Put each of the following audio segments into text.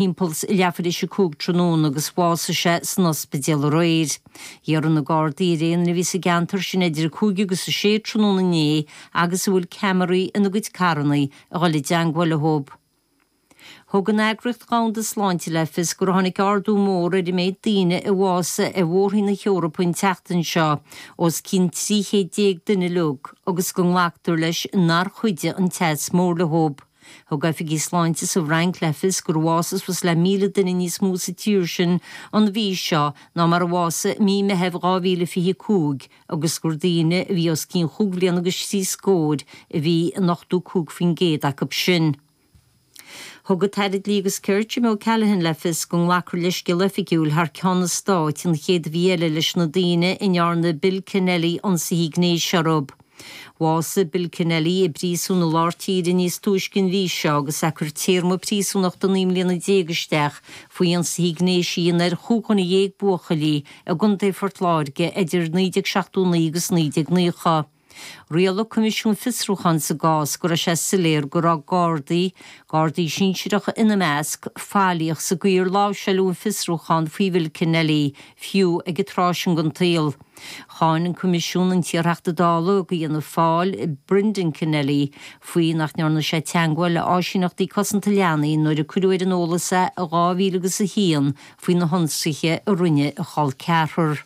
thimpeall leathuair théis a cúig tráthnóna agus bhásaigh sé san ospidéal aréir. Iarrann na Gardaí ar éinne a bhí sa gceantar sin idir a cúig agus a sé tráthnóna inné agus a bhfuil ceamaraí ina gcuid carranna a dhul i dteangmháil leo. Thug an Eagraíocht Dhomhanda Sláinte le fios gur tháinig ardú mór ar an méid daoine a bhásaigh ar Mhór-Roinn na hEorpa an tseachtain seo, os cionn 300 déag duine uilig, agus go nglactar leis nár chuidigh an teas mór leo. Thug oifigigh sláinte sa bhFrainc le fios gur bhásaigh suas le 1,000 duine níos mó sa tír sin an mhí seo ná mar a bhásaigh i mí Meithimh 2025 agus gur daoine a bhí os cionn chúig bhliana agus trí scór a bhí in 85% acu sin. Thug an tAire Dlí agus Cirt, Jim O'Callaghan le fios go nglacfar leithscéal oifigiúil thar ceann an Stáit an chéad mhí eile leis na daoine a ndearna Bill Kenneally ionsaithe gnéis orthu. Bhásaigh Bill Kenneally i bpríosún i lár tíre níos túisce an mhí seo agus é ag cur téarma príosúnachta naoi mbliana déag isteach faoi ionsaithe gnéis a dhéanamh ar chúig dhuine dhéag buachaillí i gContae Phort Láirge idir 1979 agus 1990. Rialaigh Coimisiún Fiosrúcháin sa gcás go raibh sé soiléir go raibh Gardaí, Gardaí sinsireacha ina measc, faillíoch sa gcaoi ar láimhseáladh an fiosrúchán faoi Bhill Kenneally. fiú ag an tráth sin den tsaol. Cháin an Coimisiún an t-iarTheachta Dála ag Fianna Fáil, Brendan Kenneally, faoi nach ndearna sé teagmháil le áisíneachtaí cosanta leanaí nuair a cuireadh ar an eolas é i dhá mhíle agus a haon faoi na hionsaithe a rinne a chol ceathrar.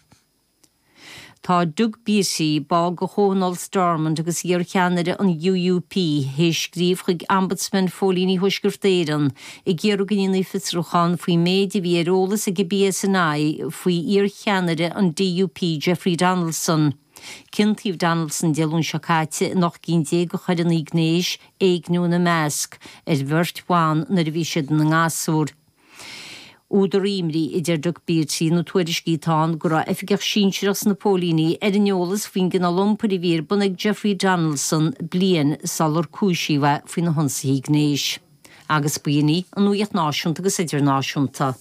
Tá Doug Beattie, ball de Thionól Stormont agus iar-cheannaire an UUP, théis scríobh chuig Ombudsman Phóilíní Thuaisceart Éireann ag iarraidh go ndéanfaí fiosrúchán faoin méid a bhí ar eolas ag an PSNI faoi iar-cheannaire an DUP Jeffrey Donaldson. Ciontaíodh Donaldson Dé Luain seo caite in ocht gcinn déag de choireanna gnéis, éigniú ina measc, ar bheirt bhan nuair a bhí siad ina ngasúir. Údar imní a deir Doug Beattie na tuairiscí atá ann go raibh oifigeach sinsearach sna póilíní ar an eolas faoin gcineál iompair a bhí ar bun ag Jeffrey Donaldson bliain sular cúisíodh é faoi na hionsaithe gnéis agus b'in é an nuaíocht náisiúnta agus idirnáisiúnta.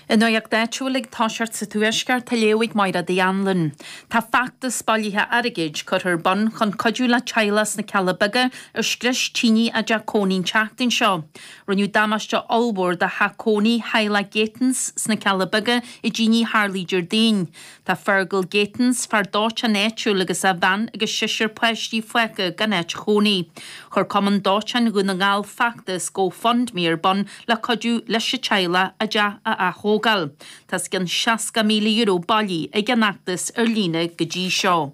An nuaíocht áitiúil ag tosacht sa Tuaisceart á léamh ag Máire D Anluain. Tá feachtas bailithe airgid curtha ar bun chun cuidiú le teaghlach sna Cealla Beaga ar scrios tine a dteach cónaí an tseachtain seo. Rinneadh damáiste ollmhór do theach cónaí theaghlach Gatens sna Cealla Beaga i dtine a tharla Déardaoin. Tá Fergal Gatens, fear dóiteáin áitiúil agus a bhean agus seisear páistí fágtha gan áit chónaí. Chuir Cumann Dóiteáin Dhún na nGall feachtas Go Fund Me ar bun le cuidiú leis an teaghlach a dteach a aththógáil. Tá os cionn €60,000 bailithe ag an fheachtas ar líne go dtí seo.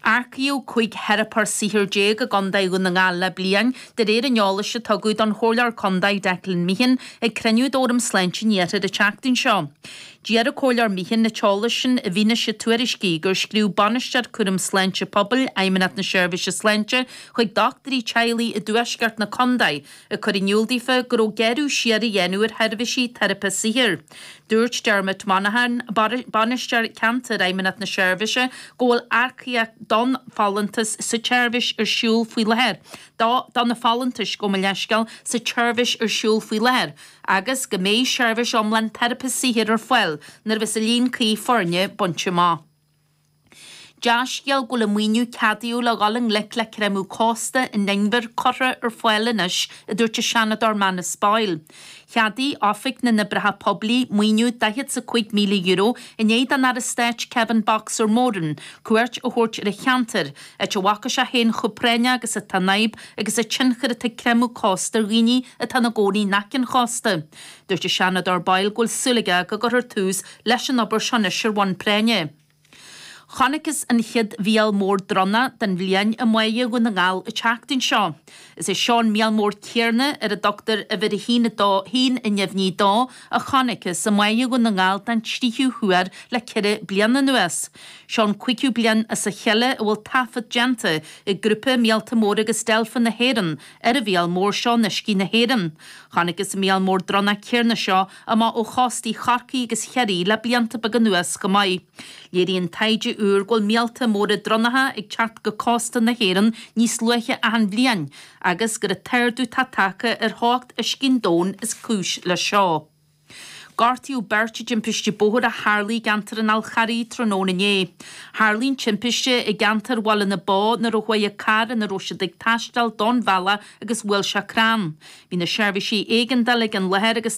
Earcaíodh cúig theiripeoir saothair déag i gContae Dhún na nGall le bliain, de réir an eolais a tugadh don Chomhairleoir Contae, Declan Meehan, ag cruinniú d'Fhóram Sláinte an Iarthair an tseachtain seo. D'iarr an Comhairleoir Meehan an t-eolas sin i bhfianaise tuairiscí gur scríobh Bainisteoir Cúram Sláinte Pobail Fheidhmeannacht na Seirbhíse Sláinte chuig dochtúirí teaghlaigh i dtuaisceart na contae Ag cur in iúl daofa go raibh gearradh siar á dhéanamh ar sheirbhísí teiripe saothair, dúirt Dermot Monaghan, Bainisteoir Ceantair Fheidhmeannacht na Seirbhíse go bhfuil earcaíocht don folúntas sa tseirbhís ar siúl faoi láthair dó do na folúntais gabh mo leithscéal sa tseirbhís ar siúl faoi láthair agus go mbeidh seirbhís iomlán teiripe saothair ar fáil nuair bheas an líon cuí foirne bainte amach. Dea-scéal é go bhfuil an maoiniú a ceadaíodh le dhul i ngleic le creimeadh cósta in Inbhir curtha ar fáil anois, a dúirt an Seanadóir Manus Boyle. Cheadaigh Oifig na nOibreacha Poiblí maoiniú daichead 's a cúig míle euro i ndiaidh don Aire Stáit Kevin 'Boxer' Moran cuairt a thabhairt ar an cheantar, áit a bhfaca sé féin chomh práinneach agus atá an fhadhb agus an tionchar atá ag creimeadh cósta ar dhaoine atá ina gcónaí in aice an chósta. Dúirt an Seanadóir Boyle go bhfuil súil aige go gcuirfear tús leis an obair seo anois ar bhonn práinne. Chonacthas an chéad mhíol mór dronnach den bhliain i mBá Dhún na nGall an tseachtain seo. Is é seo an míol mór céanna, ar a dtugtar uimhir a haon a neamhní a dó, a chonacthas i mBá Dhún na nGall den tríú huair le ceithre bliana anuas. Seo an cúigiú bliain as a chéile a bhfuil taifead déanta ag Grúpa Míolta Móra agus Deilfeanna na hÉireann Ar an mhíol mór seo in uiscí na hÉireann. Chonacthas an míol mór dronnach céarna seo amach ó chóstaí Chorcaí agus Chiarraí le blianta beaga anuas chomh maith. Léiríonn taighde úr go bhfuil míolta móra dronnacha ag teacht go cósta na hÉireann níos luaithe achan bhliain agus gur an t-ardú atá tagtha ar theocht uiscí an domhain is cúis leis seo. Gortaíodh beirt i dtimpiste bóthair a tharla i gceantar an Fháil Charraigh tráthnóna inné. Tharla an timpiste i gceantar Bhaile na Bó nuair a d'fhág an carr ina raibh siad ag taisteal an bealach agus bhuail sé crann. Bhí na seirbhísí éigeandála ag an láthair agus.